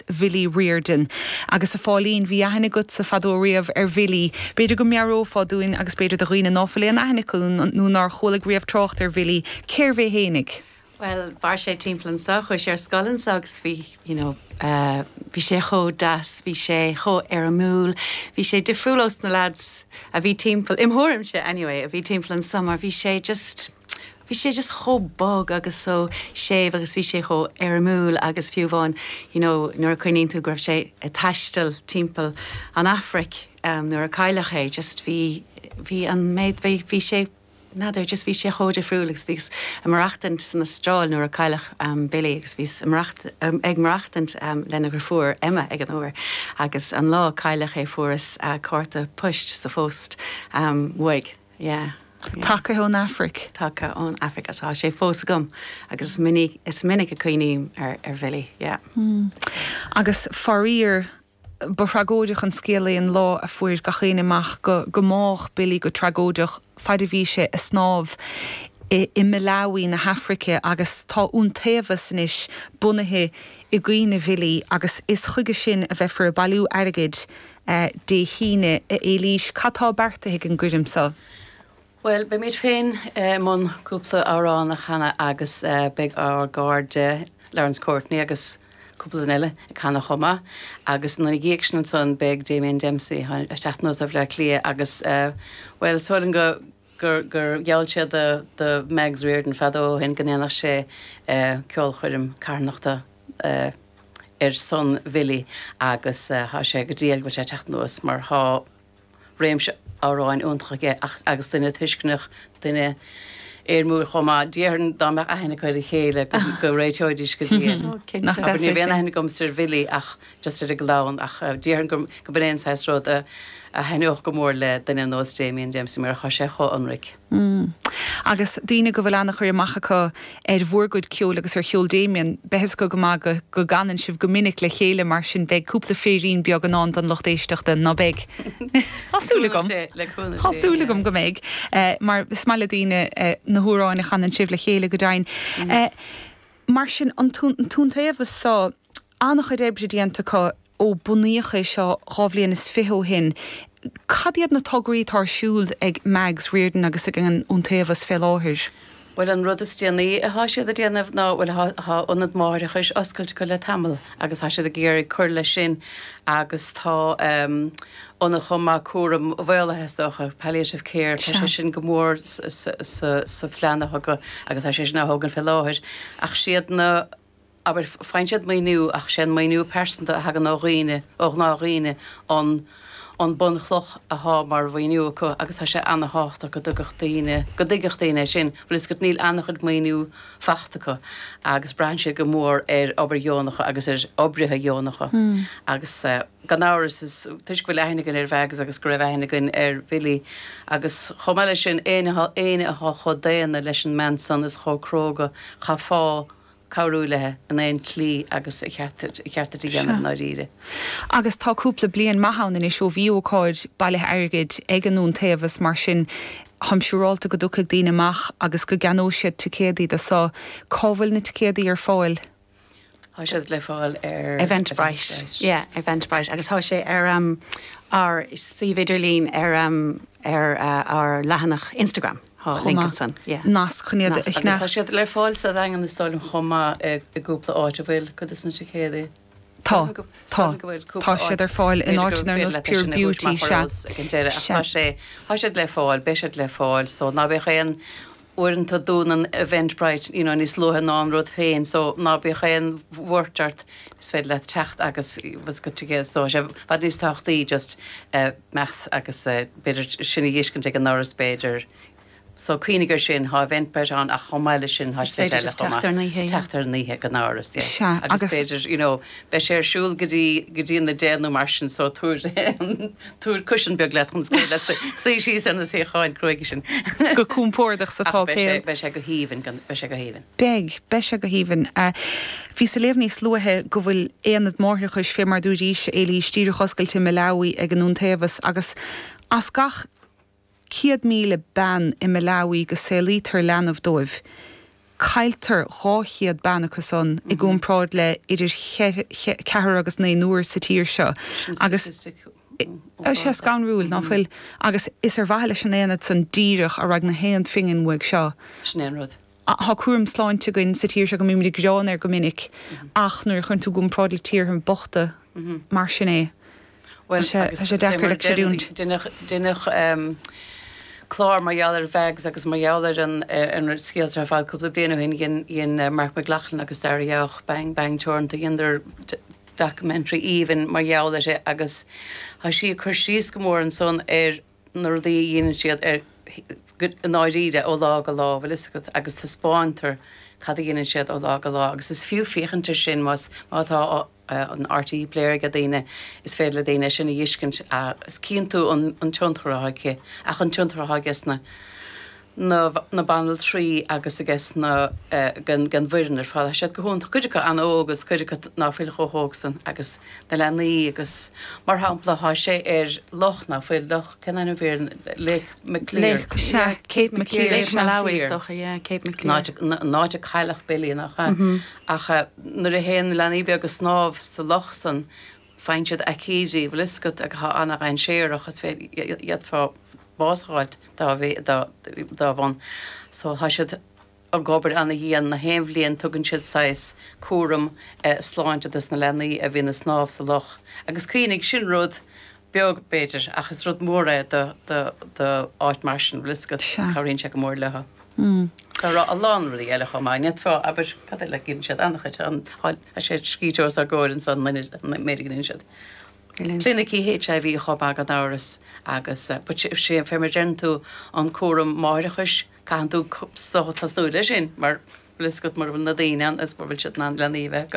Ar Bhilly Riordan. Agus a Pháilín, bhí aithne agatsa fadó riamh ar Bhilly. B'fhéidir go meabhrófá dúinn, agus b'fhéidir do dhaoine ná fuil aon aithne acu nó nár chualaigh riamh trácht ar Bhilly, cérbh é fhéinig? Bhuel, mhair sé timpeall anseo, chuaigh sé ar scoil anseo agus bhí, you know, bhí sé chomh deas, bhí sé chomh éirimiúil, bhí sé difriúil ós na lads a bhí timpeall, im' thuairimse anyway, a bhí timpeall anseo mar bhí sé just, Bhí sé just chomh bog agus chomh séimh agus bhí sé chomh éirimiúil agus fiú amháin you know nuair a chuimhníonn tú go raibh sé ag taisteal timpeall an Afraic nuair a cailleadh é just bhí bhí an méid bhí bhí sé n'fheadar just bhí sé chomh difriúil agus bhíos ag maireachtaint san Astráil nuair a cailleadh Billy agus bhíos ag maireacht ag maireachtaint lena dheirfiúr Emma ag an uair agus an lá a cailleadh é fuaireas cárta poist sa phost uaidh. Yeah, yeah. Cárta ón Afraic. Cárta ón Afraic is tá sé fós agam agus is minic, is minic a chuimhním ar, ar Bhilly, yeah. Mm. Agus faraor, ba thragóideach an scéal é an lá a fuair gach éinne amach go, gur bádh Billy go tragóideach faid a bhí sé a snámh i, i Malawi na hAfraice agus tá Iontaobhas anois bunaithe i gcuimhne Bhilly agus is chuige sin a bheifear ag bailiú airgid a, Dé hAoine, a Éilís, cad tá beartaithe ag an gcoirm so? Bhuel, beimid féin i mbun cúpla amhrán a chanadh agus beidh ár gcairde Laurence Courtney agus cúpla duine eile ag canadh chomh maith agus ina dhiaidh sin ansan beidh Damien Dempsey isteach as Baile Átha Cliath agus, bhuel, is dóigh liom go. gur gheall sé do Mags Riordan fadó ó shin go ndéanfadh sé ceolchoirm carthanachta ar son Bhilly agus tá sé go diail go bhfuil sé ag teacht anuas mar tá réimse amhráin iontach aige agus duine tuisceanach, duine éirimiúil chomh maith. Déarfainn dá mbeadh aithne acu ar a chéile go réiteoidís go diail. Ní raibh aon aithne agamsa ar Bhilly ach just ar an gclann ach déarfainn go mba é an saghas rud a thaitneodh go mór le duine ar nós Damien Dempsey mar tá sé chomh ionraic. Mm. Agus daoine go bhfuil ana-chur amach acu ar bhur gcuid ceoil agus ar cheol Damien, beidh a fhios acu go maith go go gcanann sibh go minic le chéile mar sin beidh cúpla féirín beag i ndán don lucht éisteachta, ná beidh? Tá súil agam. Cúnamh Dé, le cúnamh Dé. Tá súil agam go mbeidh, mar is maith le daoine na hamhráin a chanann sibh le chéile, go deimhin. Mar sin, an tIontaobhas so. An-chuid oibre déanta acu ó bunaíodh é seo dhá bhliain is fiche ó shin. Cad iad na tograí atá ar siúl ag Mags Riordan agus ag an Iontaobhas fé láthair? Bhuel, an rud is déanaí athá siad a' déanamh ná, bhuel athá, athá ionad máithreachais oscailte acu le tamall agus tá siad ag iarraidh cur leis sin agus tá ehm ionad chomh maith cúraim mhaolaithe is dócha, palliative care, tá sé sin go mór sa, sa, sa, sa phlean acu agus tá sé sin á thógaint fé láthair ach is iad na, Abair, faigheann siad maoiniú ach sé an maoiniú pearsanta a thagann ó dhaoine, ó ghnáthdhaoine, an an bhunchloch atá mar mhaoiniú acu agus tá sé ana-thábhachtach go dtuigfeadh daoine, go dtuigfeadh daoine é sin, bhfuil a fhios agat, níl ana-chuid maoiniú fachta acu agus braitheann siad go mór ar obair dheonacha agus ar oibrithe dheonacha agus gan amhras is toisc go bhfuil aithne againn ar Mheaigs agus go raibh aithne againn ar Bhilly agus chomh maith leis sin, éinne atá chomh daonna leis an mbean san is chomh cróga, chaithfeá. cabhrú léithi in aon tslí agus ba cheart é a dhéanamh i ndáiríre. Agus tá cúpla bliain maith ann anois ó bhí ócáid bailithe airgid ag an Iontaobhas, mar sin táim siúráilte go dtiocfaidh daoine amach agus go gceannóidh siad ticéadaí do. So, cá bhfuil na ticéadaí ar fáil? Tá siad le fáil ar Eventbrite, yeah, Eventbrite agus tá sé ar ár suíomh idirlín ar ár leathanach Instagram. Tá chomh maith. Nasc chun iad a shnaidh. Tá siad le fáil sa Daingean is dóigh liom chomh maith i gcúpla áit a bhfuil cuid de na ticéadaí. Tá. Tá. Tá siad ar fáil in áiteanna ar nós Pure Beauty, sea. Sea. Tá siad le fáil, beidh siad le fáil so ná bíodh aon, uaireanta dúnann Eventbrite you know níos luaithe ná an rud féin so ná bíodh aon bhuairt ort is féidir leat teacht agus just do thicéad so sé i bhfad níos tábhachtaí just eh maith agus b'fhéidir sin a dh'fheiscint ag an ndoras b'fhéidir so cuimhnigh ar sin thá Eventbrite ann ach chomh maith leis sin thá slite eile chomh maith teacht ar an oíche ag an ndoras yeah agus b'fhéidir you know beidh sé ar siúl go dtí go dtí an 10 nó mar sin so tabhair tabhair cushion beag leat chun gur féidir leat suí síos ar na suíocháin cruaidhe sin go compordach sa tá beidh sé go haoibhinn beidh sé go haoibhinn Beidh. Beidh sé go haoibhinn. Bhíos ag léamh níos luaithe go bhfuil aonad máithreachais, fé mar adúraís, Éilís, díreach oscailte i Malawi ag an Iontaobhas, agus as gach céad míle bean i Malawi go saolaítear leanbh dóibh, cailltear dhá chéad bean acu san, i gcomparáid le idir cheathar agus naonúr sa tír seo. Agus tá sé scanrúil, ná fuil? Agus is ar mhaithe leis an aonad san díreach a raghaidh gach aon phingin uaidh seo. Sin é an rud. Tá cúram sláinte againn sa tír seo go mbímid ag gearán air go minic ach nuair a chuireann tú i gcomparáid le tíortha bochta mar sin é, tá sé deacair le creidiúint. Deineadh clár mar gheall ar Mheaigs agus mar gheall ar a scéal ar fad cúpla bliain ó shin. Dhein Marc Mac Lochlainn agus Daire Jauch, Bang Bang Teoranta, dheineadar documentary aoibhinn mar gheall uirthi agus tá sí ag cur síos go mór ansan ar, na rudaí a dheineann siad ar i ndáiríre ó lá go lá, bhfuil a fhios agat agus taispeántar cad a dheineann siad ó lá go lá agus is fiú féachaint ar sin más má tá an RTÉ Player aige daoine is féidir le daoine é sin a dh'fheiscint agus cíonn tú an tionchar atá aici ach an tionchar atá aici sna na banaltraí agus aiges na, den bhfoireann ar fad. Tá siad go hiontach, cuid acu an-óg agus cuid acu ná fuil chomh hóg san agus na leanaí agus mar shampla tá sé ar loch, ná fuil loch, cén ainm a bhí ar an, Lake Maclear. Lake, sea, Cape Maclear, Lake Malawi is dócha, yeah, Cape Maclear. An áit a cailleadh Billy, nach ea? Ach nuair a théann na leanaí beaga ag snámh sa loch san, faigheann siad aicídí, bhfuil 'fhios agat, atá ana-dhainséarach, is féidir, d'fhéadfá bás a fháilt dá dá bhun. So tá siad ag obair ana-dhian, na haon bhliain tugann siad saghas cúram sláinte dos na leanaí a bhíonn ag snámh sa loch. Agus cuimhnigh, sin rud beag b'fhéidir ach is rud mór é do áit mar sin, bhfuil 'fhios agat, cabhraíonn sé go mór leothu. Tá rá a lán rudaí eile chomh maith, nét fáth, abair, cad eile, deineann siad an-chuid ann, tá sé scríte os ár gcomhair anso an loinnir an méid a dheineann siad. Clinicí HIV chomh maith gan amhras agus but sé, sé an fé mar deireann tú an cúram máithreachais, caitheann tú tosnú leis sin mar bhfuil fhios agat mura bhfuil na daoine ann is mura bhfuil siad in ann leanaí a bheith acu.